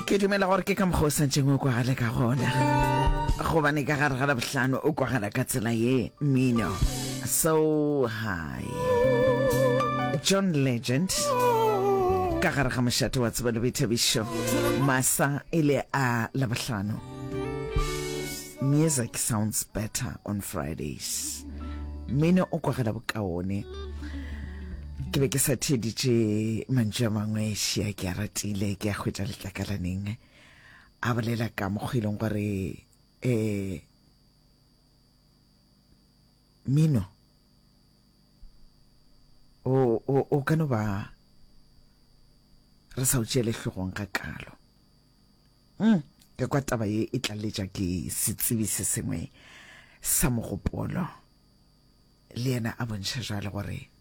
ke dumela gore ke ka mokgwa o sa ntšeng o kwagale ka gona gobane ka gare ga labohlano o kwagala ka tsela ye mino so high john legend ka gare ga mošate wa tseba le boithabišo masa e le a labohlano Music sounds better on Fridays. Mmino o kwagala bokaone. Ke be ke sa theeditše mantšu a mangwe šia ke a ratile ke a hwetša letlakalaneng a bolela ka mokgwa e leng gore um mino o ka no ba re sa o tšeele hlogong ga kalo Mm, ke kwa taba ye e tlaletša ke setsebi se sengwe sa mogopolo. Le yena a bontšha jalo gore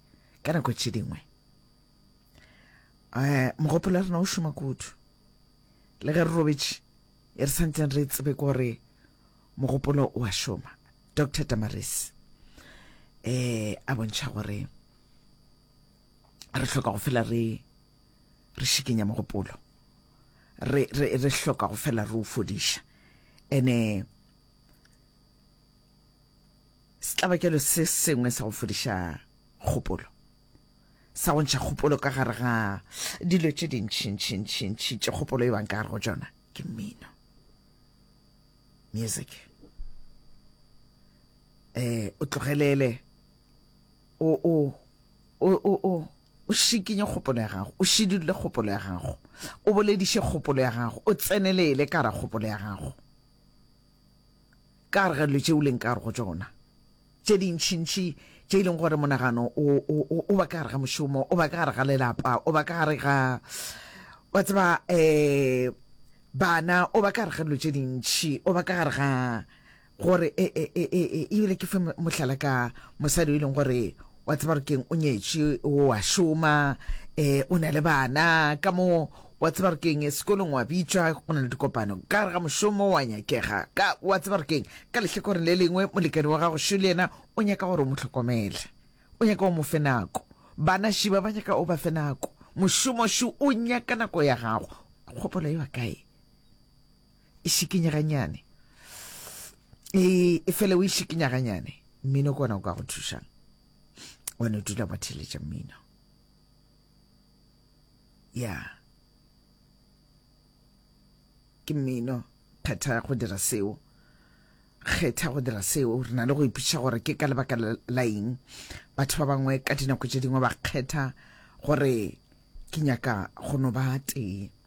ka nako tše dingwe um mogopolo wa rena o šoma kudu le ge re robetše e re santseng re tsebe gore mogopolo o a šoma dr tamaris eh a bontšha gore re hloka go fela re re šikenya mogopolo re, re, re hloka go fela re o fodiša ene setlabakelo se sengwe sa go fodiša kgopolo sa go ntšha kgopolo ka gare ga dilo tše dintšintšintšintši tše kgopolo e bang ka gare go tšona ke mmino music eh o tlogelele o o o o O šikinye kgopolo ya gago, o šidulle kgopolo ya gago, o bolediše kgopolo ya gago, o tsenelele ka gare kgopolo ya gago, ka gare ga dilo tše o leng ka gare go tšona tše dintšhintšhi tše e leng gore monagano o, o, o, o ba ka gare ga mošomo o ba ka gare ga lelapa o ba ka gare ga wa tseba um bana o ba ka gare ga dilo tše dintšhi o ba ka gare ga Gore, e, e, e, e, e, e bile ke fe mohlala ka mosadi o e leng gore wa tseba gore keng o nyetše o a šoma um o na le bana ka mo wa tseba gore keng sekolong wa bitšwa go na le dikopano ka re ga mošomo wa nyakega ka wa tseba gore keng ka lehlakoreng le lengwe molekane wa gago šo le yena o nyaka gore o mo tlhokomele o nyaka o mo fe nako bana šiba ba nyaka o ba fe nako mošomo šo o nyaka nako ya gago kgopolo e wa kae e šikinya ganyane e, e fele o e šikinya ganyane mmino ke ona o ka go thušang one dula wa theletša mmino ya yeah. ke mmino phetha go dira seo kgetha go dira seo re na le go ipotšiša gore ke ka lebaka la eng batho ba bangwe ka dinako tše dingwe ba kgetha gore ke nyaka go no ba tee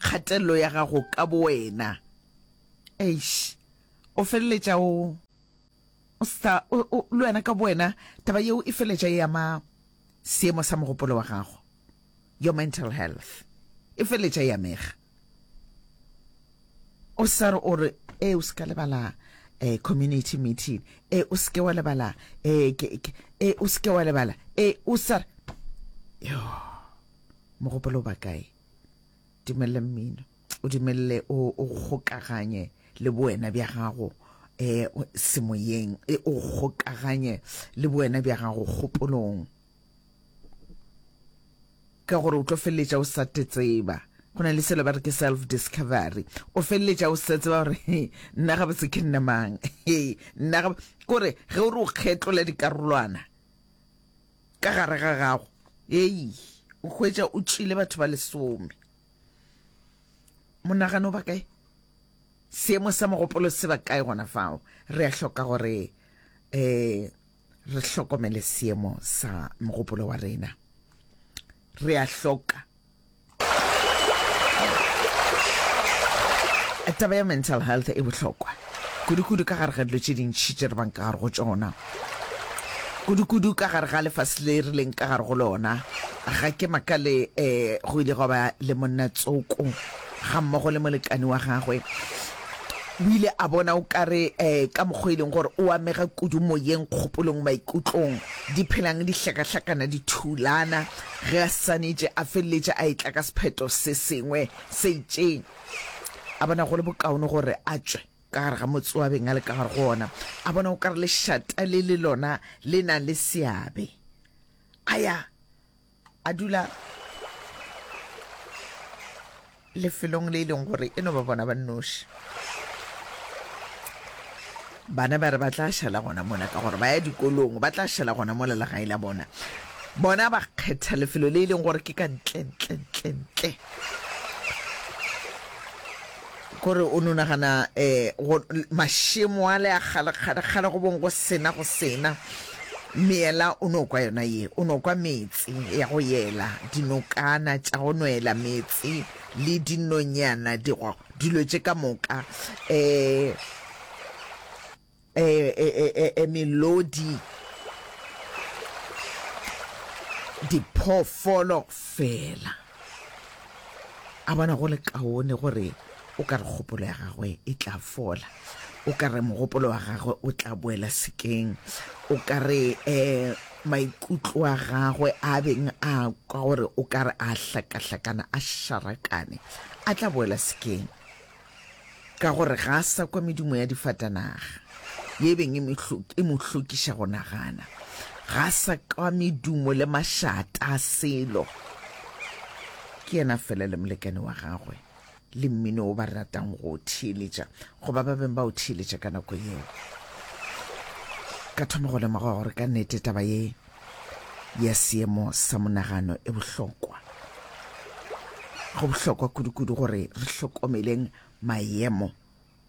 kgatelelo ya gago ka bowena. Eish, o feleletša o, o sa, o, o, le wena ka bowena, taba yeo e feleletša e ama seemo sa mogopolo wa gago. Your mental health e feleletša e amega. O sa re o re, ee, o se ka lebala eh, community meeting, ee, o se ke wa lebala eh, ke, ke, ee, o se ke wa lebala, ee, o sa re, yoo. Mogopolo o ba kae? Dimelele mmino. O dimelele o o kgokaganye le boena bja gago um semoyeng. E o kgokaganye le boena bja gago kgopolong. Ka gore o tlo feleletša o sa te tseba. Go na le selo ba re ke self discovery. O feleletša o sa tseba gore he nna gabotse ke nna mang. He nna gab kore ge o re o kgetlola dikarolwana. Ka gare ga gago, hei, o hwetša o tšile batho ba lesome. Monagano ba kae? Seemo sa mogopolo se ba kae gona fao? Re a hloka gore eh, re hlokomele seemo sa mogopolo wa rena. Re a hloka. Taba ya mental health e bohlokwa kudu-kudu ka gare ga dilo tše dintši tše re bang ka gare go tšona, kudu-kudu ka gare ga lefase le re leng ka gare go lona. Ga ke makale um go ile gwa ba le monna tsoko ga mmogo le molekane wa gagwe o ile a bona o kare um ka mokgwa e leng gore o amega kudu moyeng, kgopolong, maikutlong, di phelang di hlakahlakana, di thulana. Ge a ssanetše, a feleletša a etla ka sephetho se sengwe se itšeng. A bona go le bokaone gore a tšwe ka gare ga motse o a beng a le ka gare go ona. A bona o ka re lešata le le lona le na le seabe. A ya a dula. Lefelong le e leng gore e no ba bona ba nnoši. Bana ba re ba tla šala gona mola ka gore ba ya dikolong, ba tla šala gona mola legae la bona. Bona ba kgetha lefelo le e leng gore ke ka ntle, ntle, ntle, ntle. Kore o no nagana um mašemo a le a kgalekgale, kgale go bong go sena, go sena. Meela o no kwa yona ye, o no kwa meetse ya go yela, dinokana tša go nwela meetse le dinonyana, digwa, dilo tše ka moka, e, e, e, e, e, e melodi, diphoofolo fela. a bona go le kaone gore o ka re kgopolo ya gagwe e tla fola o ka re mogopolo wa gagwe o tla boela sekeng o ka re um maikutlo a gagwe a beng a kwa gore o ka re a hlakahlakana a šarakane a tla boela sekeng Ka gore ga a sa kwa medumo ya difatanaga, ye e beng e mo hlokiša go nagana. Ga a sa kwa medumo le mašata a selo. Ke yena fela le molekane wa gagwe le mmino o ba ratang go o theeletša, goba ba beng ba o theeletša ka nako yeo. Ka thoma go lemoga gore ka nnete taba ye ya seemo sa monagano e bohlokwa. Go bohlokwa kudu-kudu gore re hlokomeleng maemo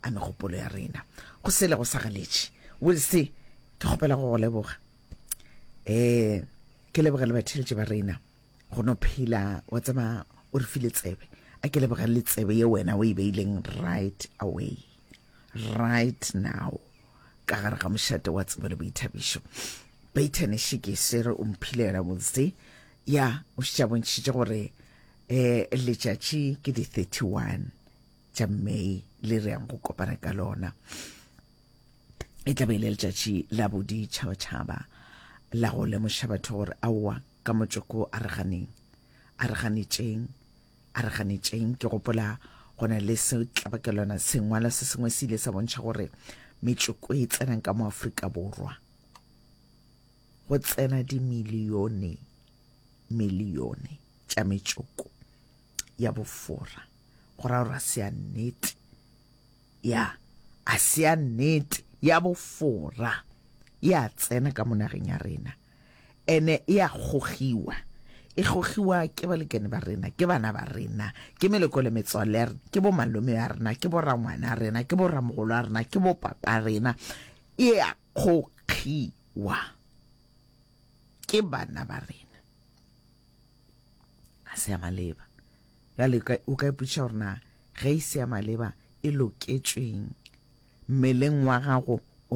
a megopolo ya rena. Go sele go sa galetše. Wilse, ke kgopela go go leboga. Eh, ke leboga le batheletše ba rena. Go no phela wa tseba o re file tsebe. A ke leboga le tsebe ye wena o e beileng right away. right now ka gare ga mošate wa tsebo le boithabišo baitane šeke sere o mphile yona botse ya o šitša bontšhitše gore um letšatši ke di-31 tša may le re yang go kopana ka lona e tla be le letšatši la boditšhabatšhaba la go lemoša batho gore aowa ka motsoko a re ganeng a re ganetšeng A re ganetšeng, ke gopola go na le setlabakelwana sengwalwa se sengwe se ile sa bontšha gore metšoko e tsenang ka mo Afrika Borwa go tsena dimilione milione tša metšoko ya bofora go ra gore a se ya nnete ya a se ya nnete ya bofora ya tsena ka monageng ya rena Ene e a gogiwa. E gogiwa ke balekane ba rena, ke bana ba rena, ke meloko le metswalle ya rena, ke bomalome ba rena, ke borangwana ba rena, ke boramogolo ba rena, ke bopapa ba rena. E a gogiwa ke bana ba rena. Ga se ya maleba. Bjale o ka ipotšiša gore na ge e se ya maleba e loketšweng mmeleng wa gago o